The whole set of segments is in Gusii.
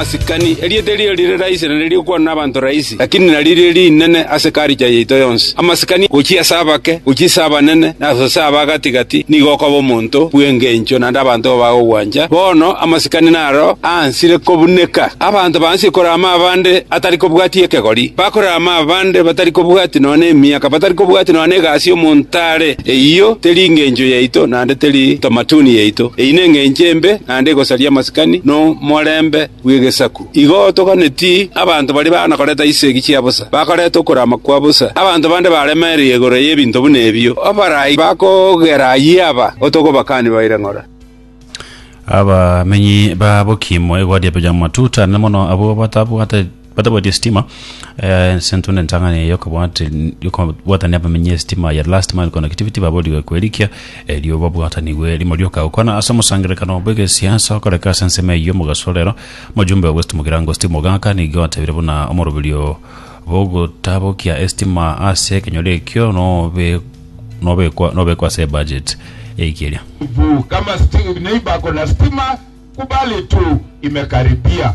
Asikani, erieta erio rire raisi na ririkwanwa nabanto raisi, lakini naririo rinene ase ekarikya yaito yonsi. Amasikani gochia ase abake, gochia ase abanene, na ase aba gati‐gati nigo okoba omonto bw'engencho naende abanto bagogwancha. Bono amasikani naro aansire kobuneka. Abanto baansie korama abande atari kobwati ekegori, bakorama abande batari kobwati nonya emiaka, batari kobwati nonya egasi omonto are. Eyio teri engencho yaito, naende teri entamatuni yaito. Eyio nengencho embe. naende egosaria amasikani nomorembe bw'egesaku. Igo toganeti abanto baria baana koreta chisegi chia bosa, bakareta okorama kwa bosa, abanto bande baremereire igoro y'ebinto buna ebio, abarai bakogera ayio aba otogobakani baire ng'ora. Abamenyi ba Bokimu, Egodi, Ebeja, Matuta, na mono abwo batabwate. Batabwati esitima ase intwe na entang'ani eye y'okobwatania abamenyi esitima ya Last Mile Connectivity baborigwe kwerikia erio babwatanigwe rimo rioka gokwana ase omosangererekano bw'egesiasa okoreka ase ensemo eyio omogaso orero. Omojumbe bw'esitimu Kirango Steve Mogaka nigo atebire buna omoroberio bw'ogotabokia esitima ase ekenyoro ekio nobekwa ase ebaget eike eria. Kama neiba kona stima kubali tu imekaribia.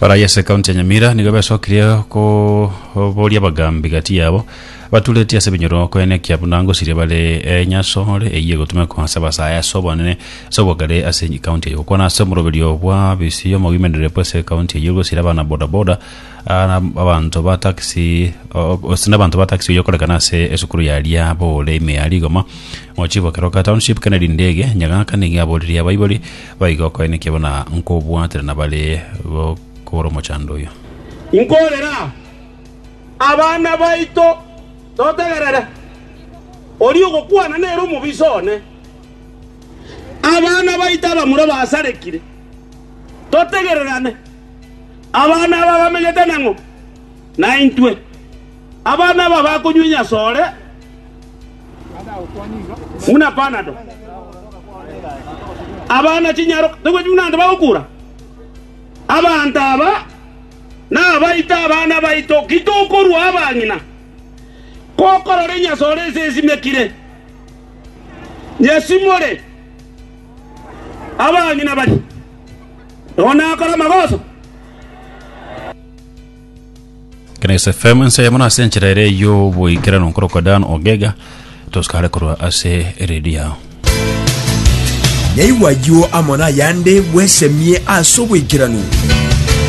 Barayi ase ekaunti ya Nyamira nigo besokirie koboria abagambi gati yabo baturetie ase ebinyoro koenekia buna ngosiria bare enyasore eyio egotumekwa ase abasae ase obonene ase obogare ase ekaunti eyio gokwana ase omoroberio bwa bisi omogimenereri bwase ekaunti eyio gosira abana bodaboda ah, na abanto ba taxi o- o- ase nabanto ba taxi oyio okorekana ase esukuru ya Liabore ime ya rigoma mochibokeroka township Kennedy Ndege Nyagaka nigo aboririe abaibori Baigo okoina kiabo na nkobwatera nabare bokobora omochando oyio. Nkorera abana baito totegerere, oria ogokwana nere omobisa one. Abana baito abamura basarekire, totegererane, abana aba bamenyete nang'o? Naintwe, abana aba bakonywenya asore buna panado, abana chinyaroka togweti buna ande bagokura. Abanto aba nabaito abana baito, ki tokorua abang'ina? Kokorora enyasore ase esimekire, nyesimore abang'ina baria, nonya nakore amagoso. Grace FM ense yamo nase enchera ere yo boikerano nkorokwa Dan Ogega tosikare korwa ase eredio yao Naigwa ayio amo nayande bwesemie ase oboikeranu.